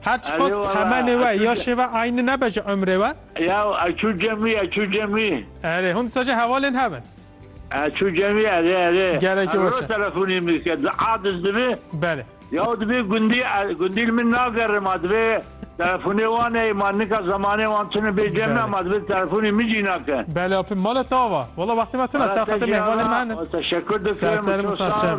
Her çiqas temenê we, yaşê we eyni nebe ji umrê we. Ya ez çû cemî, ez çû cemî. Erê, hûn disa jî hevalên hev in. Ez çû cemî, erê, erê. Gerekî weş e. Erê, telefonê min dike, di a diz dibe. Belê. Ya divê gundî, gundî li min nagerim a, divê telefonê wan ey, ma nika zemanê wan tune bê cem na, ma divê telefonê min jî nake. Belê, apê mala te ava. Wala wextê me tune, serqetê mêvanê me hene. Teşekkür dikim. Ser serê min sar çav.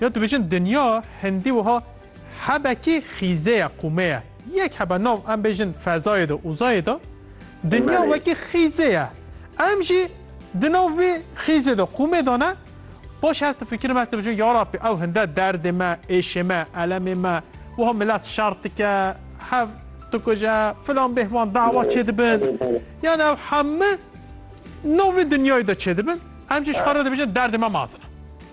Ya dibêjin dinya hindî wiha hebekî xîze ye, qûme ye. Yek hebe nav em bêjin fezayê de, uzayê de. Dinya wekî xîze ye. Em jî di nav vî xîze de, qûmê de ne. Paşê ez difikirim, ez dibêjim ya Rabbî ew hinde derdê me, êşê me, elemê me, wiha milet şer dike, hev dikuje, filan bêhvan dawa çêdibin. Yani ew heme nav vî dinyayê de çêdibin. Em jî ji xwe re dibêjin derdê me mezin e.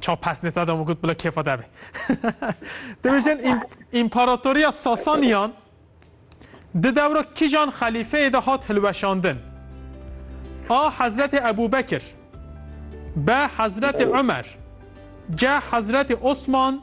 Çaw pes ne tade mı gut bile kefa de be. Dibêjin İmparatoriya Sasaniyan di devra kijan xelîfeyê de hat hilweşandin. A. Hezretê Ebu Bekir B. Hezretê Ömer C. Hezretê Osman